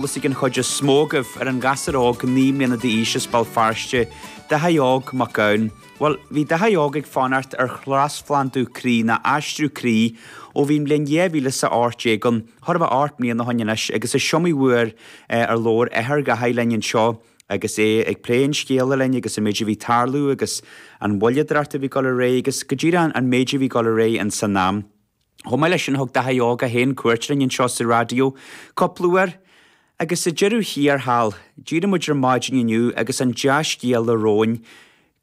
Eolas ag an chuid is mó agaibh ar an ghasúr óg naoi mbliana d'aois as Béal Feirste, Daithí Óg Mac Gabhann. Bhuel, bhí Daithí Óg ag fanacht ar thrasphlandú croí, nó aistriú croí, ó bhí an bhliain 2018 ann, chóir a bheith ocht mbliana ó shin anois, agus is iomaí uair ar labhair athair Dhaithí linn anseo, agus é ag plé an scéala linn, agus an méid a bhí ag tarlú, agus an mhoilleadóireacht a bhí ag dul ar aghaidh, agus go díreach an méid a bhí ag dul ar aghaidh in san am. Chomh maith leis sin thug Daithí Óg é féin cuairt orainn anseo sa raidió cúpla uair agus sa deireadh thiar thall d'éirigh muid ar maidin inniu agus an dea-scéala romhainn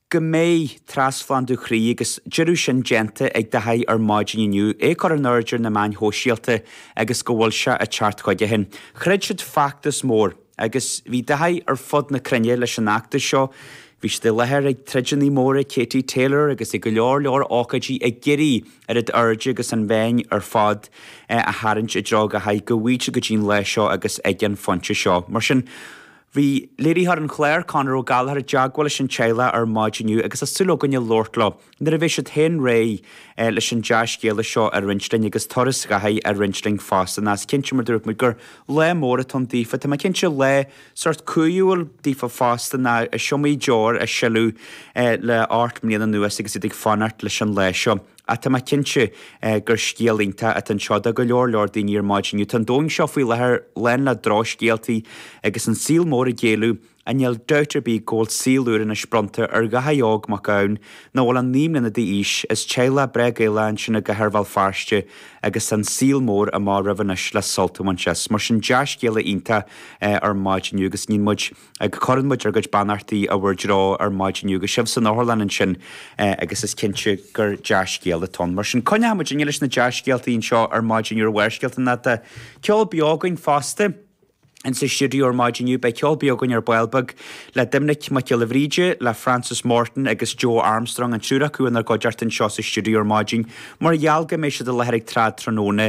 go mbeidh trasphlandú croí agus deireadh sin déanta ag Daithí ar maidin inniu, é a cur in airde ar na meáin shóisialta agus go bhfuil sé ag teacht chuige féin. Throid siad feachtas mór. Agus bhí Daithí ar fud na cruinne leis an fheachtas seo. Bhí siad i láthair ag troideanna móra Katie Taylor agus ag go leor leor ócáidí ag iarraidh an aird agus an bhéim ar fad a tharraingt i dtreo Dhaithí go bhfaighfí go dtí an lá seo agus ag an phointe seo. Mar sin, bhí léiritheoir an chláir, Conor Ó Gallchóir, i dteagmháil leis an teaghlach ar maidin inniu agus tá súil againne labhairt leo. Nuair a bheidh siad féin réidh leis an dea-scéala seo a roinnt linn, agus turas Dhaithí á roinnt linn fosta, nó is cinnte, mar dúirt muid gur lá mór atá ann daofa, tá mé cinnte, lá sórt cumhúil daofa fosta, nó is iomaí deoir a sileadh le hocht mbliana anuas agus iad ag fanacht leis an lá seo. Ach tá mé cinnte gur scéal iontach atá anseo do go leor leor daoine ar maidin inniu. Tá an domhan seo faoi láthair lán le drochscéaltaí agus an saol mór ag géilleadh. Níl dabht ar bith go bhfuil saol úr anois bronnta ar Dhaithí óg Mac Gabhann nach bhfuil ach naoi mbliana d'aois is teaghlach breá Gaelach ansin i gcathair Bhéal Feirste agus an saol mór amach roimhe anois le sult a bhaint as? Mar sin, dea-scéala iontach ar maidin inniu agus níl muid ag cuireann muid ár gcuid beannachtaí i bhur dtreo ar maidin inniu agus sibh san otharlann ansin agus is cinnte gur dea-scéala atá ann. Mar sin, coinneochaidh muid linn leis na dea-scéaltaí anseo ar maidin inniu ar Bharrscéalta nó beidh ceol beo againn fosta. Ins an stiúideo ar maidin inniu beidh ceol beo againn ar ball beag, le Doimnic Mac Giolla Bhríde, le Frances Morton agus Joe Armstrong, an triúr acu inár gcuideachta anseo sa stiúideo ar maidin mar gheall go mbeidh siad i láthair ag Trad Tráthnóna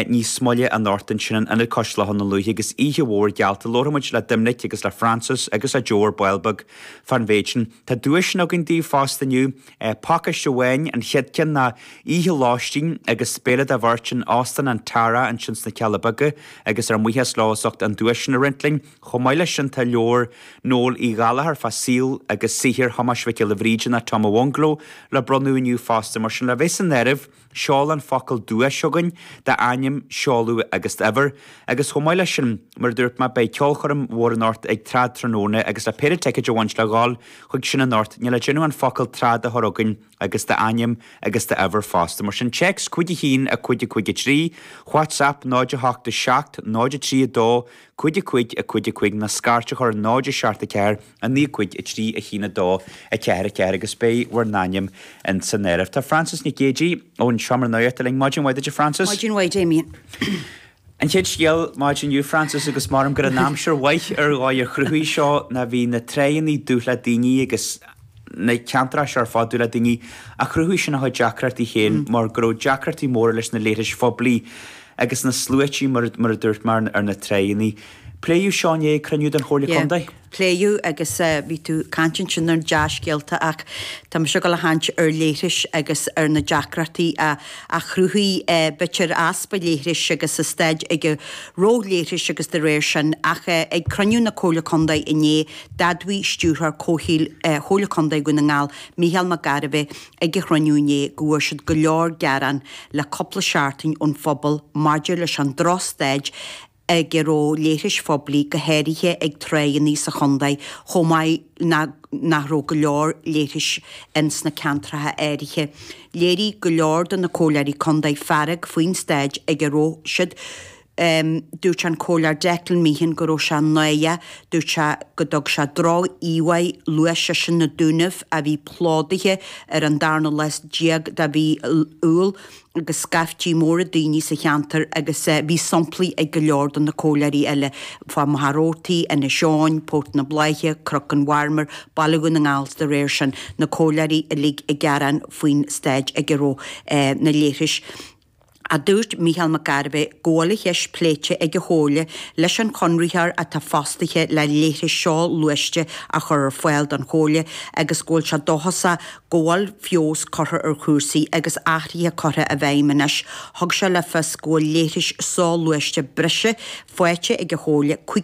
níos moille anocht ansin in Ionad Cois Locha Dhún Lúiche agus oíche mhór geallta. Labharfaidh muid le Doimnic agus le Frances agus le Joe ar ball beag fán mhéid sin. Tá duaiseanna againn daoibh fosta inniu. Pácáiste amháin, an chéad ceann ná oíche lóistín agus béile do bheirt in Óstán an Tara ansin sna Cealla Beaga agus ar mbuíochas leo as ucht an duais sin a roinnt linn. Chomh maith leis sin tá leabhar Noel Uí Ghallchóir fá saol agus saothar Thomáis Mhic Giolla Bhríde, nó Tom i bhFiongnhleo, le bronnadh inniu fosta. Mar sin, le bheith san áireamh, Seol an focal duais chugainn d'ainm seoladh agus d'uimhir, agus chomh maith leis sin, mar a dúirt mé, beidh ceolchoirm mhór anocht ag Trad Tráthnóna agus le péire ticéad a bhaint le dhul chuig sin anocht, níl le déanamh ach an focal trad a chur chugainn agus d'ainm agus d'uimhir fosta. Mar sin, téacs, Cúig a haon, a cúig, a cúig, a trí, WhatsApp, 08, 7, 0, 3, 2, cúig, a cúig, a cúig, a cúig, ná scairt a chur, 0, 7, 4, 9 5 3 1 2 4 4 agus beidh bhur n-ainm ins an áireamh. Tá Frances Nic Géidigh ón Seomra Nuachta linn. Maidin mhaith duit, a Frances. Maidin mhaith, Damien. An chéad scéal, Maidin inniu, Frances, agus maram gur an aimsir mhaith ar dhóigh a chruthaigh seo ná bhí na tráigheannaí dubh le daoine agus na ceantracha seo ar fad dubh le daoine ach chruthaigh sin a chuid deacrachtaí féin mar go raibh deacrachtaí móra leis na leithris phoiblí agus na sluaití mar a dúirt mé ar na tráigheannaí. Pléadh seo inné ag cruinniú den Chomhairle Contae. pléadh agus bhí tú ag caint ansin ar dea-scéalta ach tá mise ag dul a chaint ar leithris agus ar na deacrachtaí a chruthaigh b'fhéidir easpa leithris agus an staid ag a raibh leithris agus de réir sin. Ach ag cruinniú na Comhairle Contae inné, d'admhaigh Stiúrthóir Comhshaoil Chomhairle Contae Dhún na nGall, Micheál Mac Gairbheith ag an chruinniú inné go bhfuair siad go leor gearán le cúpla seachtain ón phobal maidir leis an droch-staid a ag a raibh leithris phoiblí, go háirithe ag tráigheanna sa chontae, chomh maith ná nach raibh go leor leithris ins na ceantracha áirithe. Léirigh go leor de na Comhairleoirí Contae fearg faoin stáid ag a raibh siad. Dúirt an Comhairleoir Declan Meehan go raibh sé náireach, dúirt sé go dtug sé droch-íomhá, luaigh seisean na Dúnaibh a bhí plódaithe ar an darna lá déag de mhí Iúil, agus scaiftí móra daoine sa cheantar agus bhí somplaí ag go leor de na comhairleoirí eile, fá Mhachaire Rabhartaigh, Inis Eoghain, Port na Bláiche, Cnoc an Mharmair, Baile Dhún na nGall 's da réir sin, na comhairleoirí uilig ag gearán faoin stáid ag a raibh na leithris. ach dúirt Mícheál Mac Gairbheith go bhfuil an cheist pléite ag an Chomhairle leis an chonraitheoir atá fostaithe le leithris soghluaiste a chur ar fáil don Chomhairle agus go bhfuil sé dóchasach go bhfuil feabhas curtha ar chúrsaí agus athruithe curtha i bhfeidhm anois, thug sé le fios go bhfuil leithris soghluaiste breise faighte ag an chomhairle chuig